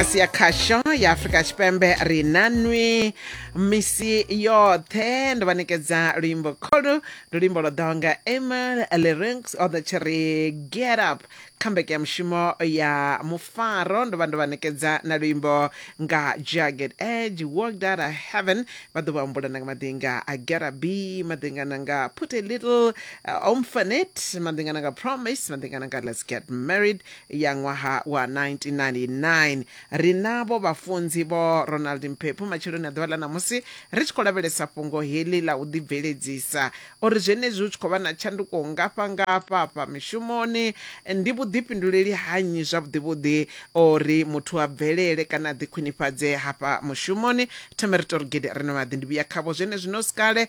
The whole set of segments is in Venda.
mudagasi ya khasho ya afurika tshipembe ri na nwi misi yoṱhe ndo vha ṋekedza luimbo kholu ndi luimbo lwo ḓaho nga emil lerings o ḓo tshi ri get up comeback ya mushumo ya mufaro ndo vha ndo vha ṋekedza na luimbo nga jagged edge walked out of heaven vha ḓo vha humbula na nga madinga a get up b madinga na nga put a little uh, omfanet madinga na nga promise madinga na nga let's get married ya ṅwaha wa 1999. Ri navho vhafunzi Vho Ronald Mphephu matsheloni a ḓuvha ḽa ṋamusi ri tshi khou lavhelesa fhungo heḽi ḽa u ḓibveledzisa. O ri zwenezwi hu tshi khou vha na tshanduko nngafha ngafha afha mishumoni, ndi vhuḓifhinduleli ha nnyi zwavhuḓivhuḓi o ri muthu a bvelele kana a ḓikhwinifhadze hafha mushumoni? Thome ri tou ri gede ri no maḓi ndi vhuya khavho zwenezwino sikale.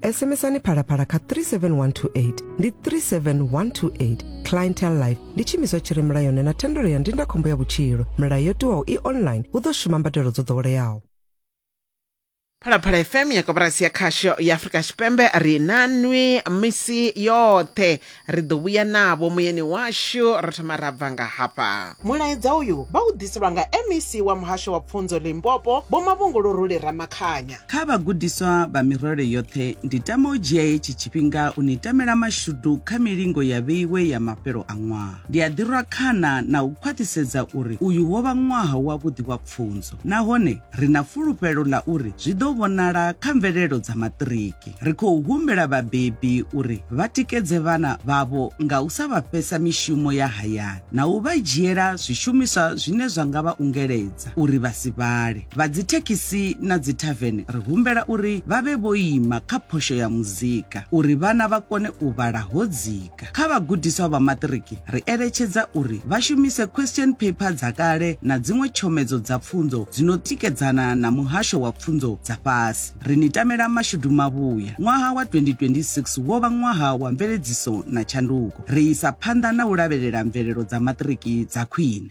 SMSani phalaphala kha 37128 ndi 37128 clientele life ndi tshiimiswa tshi re mulayoni na thendelo ya ndindakhombo ya vhutshilo milayo yo tiwaho i online hu ḓo shuma mbadelo dzo ḓoweleaho phalaphala fm ya koporasi ya khasho ya afurika tshipembe ri na nwi misi yoṱhe Ri ḓo vhuya navho muyani washu ra thoma ra bva nga hafha. Mulaedza uyu vha u ḓiselwa nga MEC wa Muhasho wa Pfunzo Limpopo, Vho Mavhunguluruli Ramakhanya. Kha vhagudiswa vha mirole yoṱhe, ndi tama u dzhia hetshi tshifhinga u ni tamela mashudu kha milingo ya vheiwe ya mafhelo a ṅwaha. Ndi a ḓi rwa khana na u khwaṱhisedza uri uyu wo vha ṅwaha wavhuḓi wa pfunzo nahone ri na fulufhelo ḽa uri zwi ḓo vhonala kha mvelelo dza maṱiriki. Ri khou humbela vhabebi uri vha tikedze vhana vhavho nga u sa vha fhesa mishumo ya hayani na u vha dzhiela zwishumiswa zwine zwa nga vha ungeledza uri vha si vhale. Vha dzithekhisi na dzithavene ri humbela uri vha vhe vho ima kha phosho ya muzika uri vhana vha kone u vhala ho dzika. Afrika. Kha vhagudiswa vha maṱiriki, ri eletshedza uri vha shumise question paper dza kale na dziṅwe tshomedzo dza pfunzo dzi no tikedzana na muhasho wa pfunzo dza fhasi. Ri ni tamela mashudu mavhuya. Ṅwaha wa 2026 wo vha ṅwaha wa mveledziso na tshanduko. Ri isa phanḓa na u lavhelela mvelelo dza maṱiriki dza khwine.